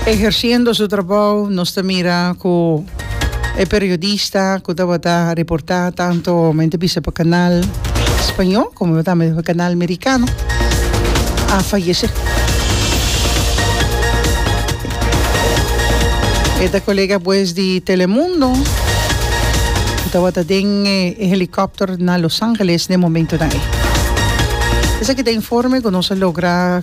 Eherciendo su trabou nos ta mira cu e periodista cu tabata reporta tanto men ta bisa pa canal Spaño como tambe pa canal Mericano a fayece. E ta colega pues di Telemundo cu tabata den e helicopter na Los Angeles den momentonan ey. Esaki ta informe cu nos a logra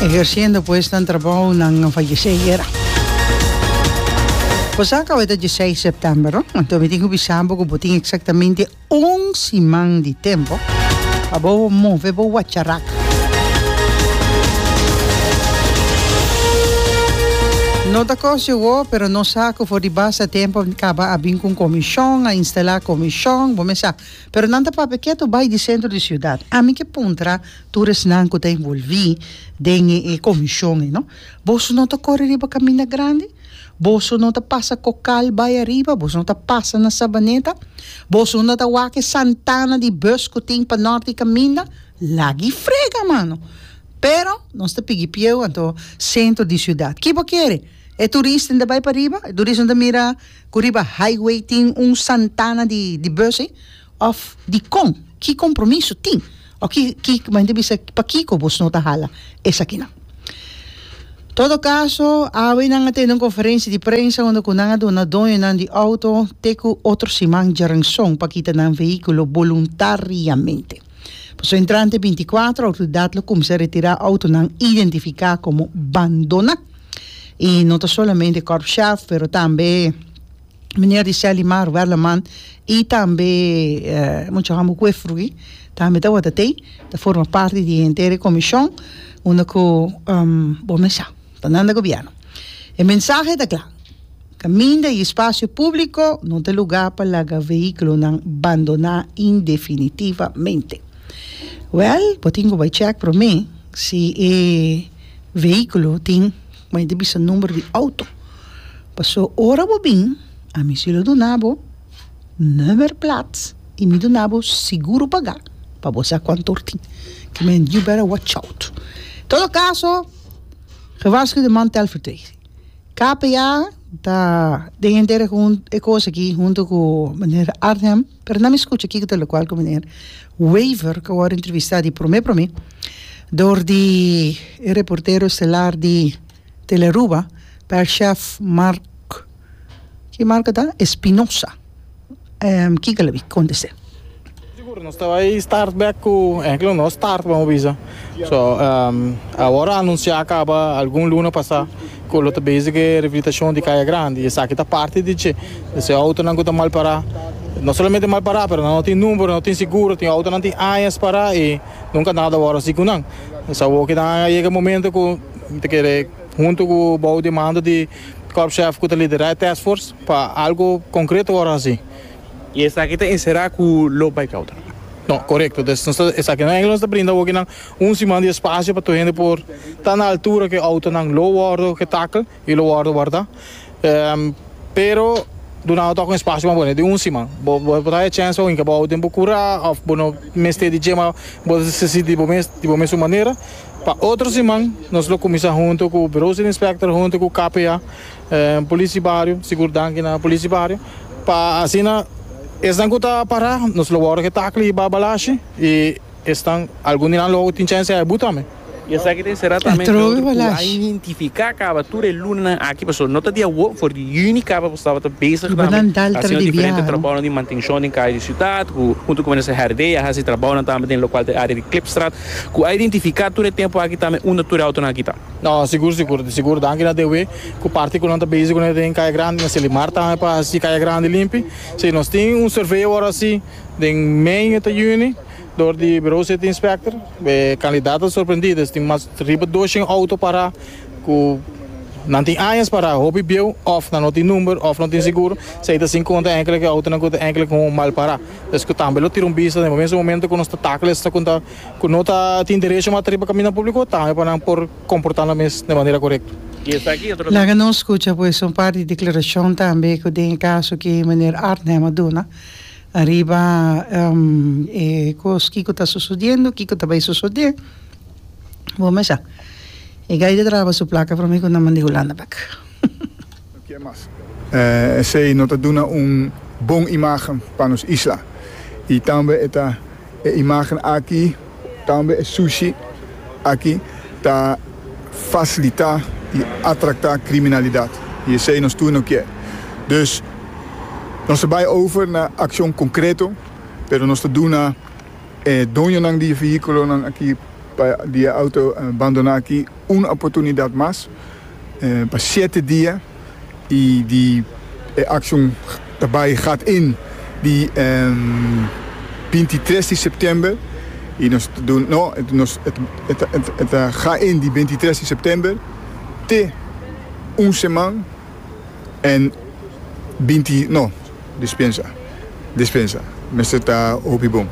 Eherciendo pues nan trabou nan a fayesé ayera. Bosa kaba e ta diesseis september no? Anto mi tin ku bisa bo ku bo tin eksaktamente un siman di tempu pa bo move bo wacharak. No ta kos yo wou pero no sa ku for di basta tempu Caba a bin cu un comision, a instala comision, bo mes sa. Pero nan ta papia keto bay di centro di ciudad. Ami ke puntra tur esnan cu ta envolvi den e comision e no. Boso no ta cori riba caminda grandi? Boso no ta pasa cocal bay ariba? Boso no ta pasa na Sabaneta? Boso no ta wak e santana di bus cu tin pa Norte caminda? Lagi frega mano! Pero nos ta pigi pieu anto centro di ciudad. Ki bo kere? E turisnan ta bai pariba, e turisnan ta mira ku riba highway tin un santana di di busnan òf dikon? Ki kompromiso tin? Òf ki ki ku hende ta bisa pakiko bos no ta hala esakinan? Todo kaso awe nan a tene un konferensia di prensa unda ku nan a duna doñonan di outo te ku otro siman djaranson pa kita nan vehikulo boluntariamente. Pasobra entrante binti kuater outoridat lo kuminsá retirá outonan identifiká komo bandona i no ta solamente Corp Shaf pero tambe Meneer Riseldy Mar Werleman i tambe mucha homi ku e frui tambe tabata tei ta forma parti di henter e komishon unda ku bo mester sa ta nan na gobièrnu e mensahe ta kla. Kaminda i spasio públiko no ta lugá pa laga vehíkulonan bandoná indefinitivamente. Wèl, bo tin ku bai chèk promé si e vehíkulo tin, kuma e ta bisa, number di outo. Pasó ora bo bin, ami si lo duna bo nummer plaats i mi duna bo seguro pagá pa bo sa kuantu hor tin. Ke men you better watch out. Todo kaso, gewaarsku de man Telford Tracy. KPA ta den henter e hun e kos aki hunto ku meneer Arnhem pero na mi skucha kiko ta lokual ku meneer Wever ku a wòrdu entrevistá di promé promé dor di e reportero estelar di Telearuba Pèr Chèf Marc ki Marc ta Espinosa. kiko lo bin kontest'é. Sigur nos ta bai start bek ku ehemplo nos start bo bisa so awor a anunsiá kaba algun luna pasá ku lo ta bezig e reabilitashon di kaya grandi i esaki ta parti di dje di se outonan ku ta mal pará no solamente mal pará pero nan no tin numero no tin seguro tin outonan tin añas pará i nunka nada awor a hasi ku nan es awor ku nan a yega e momento ku mi ta kere huntu ku bou demanda di kòrpshèf ku ta liderá e tèskfors. Pa algo concreto worde haci. Y esaki ta encera cu loop by cauta. No, corecto. Des nos ta esaki na Engelo nos ta brinda awokinan un siman di espacio pa tur hende por ta na altura cu e autonan lo worde oca e tackle y lo worde warda. Pero dunado toca un espacio mas bono, e di un siman. Bo por ta haci e chance pa winca bo auto den bo cura of bo no mester di djema bo ta sinti bo mes di bo mes un manera. Pa otro siman nos lo cuminsa hunto cu Bureau City Inspector hunto cu KPA. Polici bario, sigur danki na polici bario pa asina esnan cu ta para nos lo wordo cu e takle y barbalashi y esnan algun di nan lo tin chance hae buta me. Y esaki ta encera tambe entre otro cu a identifica caba tur e lunanan aki pasobra no ta di awo for di juni caba bo staba ta bezig tambe haciendo diferente trabounan di mantencion den caya di ciudad cu hunto cu minister Herdey a haci trabounan tambe den locual den area di Clipstraat cu a identifica tur e tempo aki tambe unda tur e autonan aki ta. No, sigur sigur di sigur. Danki na DW cu parti cu nan ta bezig cu nan den Caya Grandi, na Selimar tambe pa haci Caya Grandi limpi. Sí, nos tin un survey awor haci den mei esta juni door di Bureau City Inspector. E candidat ta sorprendido, es tin mas riba doshen auto para cu nan tin añas para hopi bieu of nan no tin number of no tin sigur. Sí, ey ta haci conta enkele cu e autonan cu ta enkele con un mal para. Escu tambe lo tira un bista den momento cu nos ta takel esaki. ku no ta tin derecho mas ta riba kaminda públiko, tambe pa nan por komportá nan mes den manera korekto. Laga nos skucha pues un par di deklarashon tambe ku den e kaso ku meneer Arnhem a duna ariba e kos kiko ta sosodiendo, kiko ta bai sosodé. Bo mes sa, e gay ta traba su plaka for mi ku nan manda e Hulandabac. Esei no ta duna un bon imagen pa nos isla y tambe e ta e imagen aki tambe e sushi aki ta facilita y atracta criminalidad y esei nos tur no kier. Dus nos ta bay over na accion concreto pero nos ta duna e doñonan di e vehiculonan aki pa di e auto bandona aki un oportunidad mas. pa shete dia y di e accion ta bay gaat in di bintitres di september y nos ta duna no nos e ta gaat in di bintitres di september te un seman en binti no. Dispensa, dispensa, mester ta hopi bon.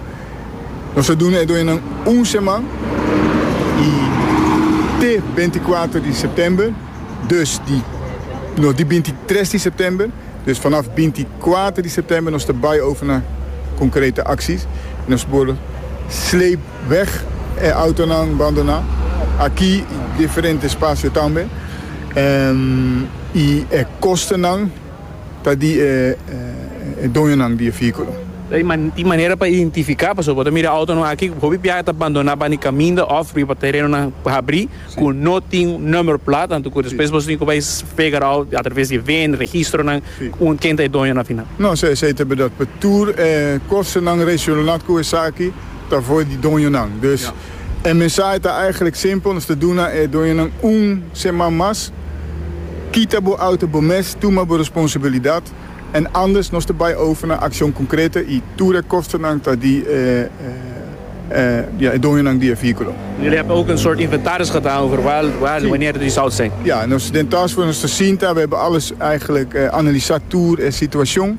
Nos ta duna e doñanan un seman i te binticuater di september, dus di, no, di bintitres di september. Dus vanaf binticuater di september nos ta bai over na concrete acties i nos por sleep weg e autonan bandoná aki i diferente espacio tambe. I e kostennan. ta di e doñonan di e vehículo. Tin manera pa identifica, pasobra bo ta mira autonan aki cu hopi biaha ta bandona banda di caminda of riba terenonan habri cu no tin number plate, anto cu despues bo tin cu bay figure out a traves di e vin, registronan, ken ta e doño na final. No, esey ta berdad, pa tur e costanan relacionad cu esaki ta for di doñonan, dus. E mensahe ta eigenlijk simpel, nos ta duna e doñonan un seman mas, Kita bo auto bo mes, tuma bo responsabilidat, en andes nos ta bai over na accion concrete y tur e kostennan ta di e doñonan di e vehiculo. Jullie hebben ook een soort inventaris gedaan over waar, waar en wanneer die zout zijn? Ja, nos den taskforce nos ta sinta, we hebben alles eigenlijk analisa tur e situacion.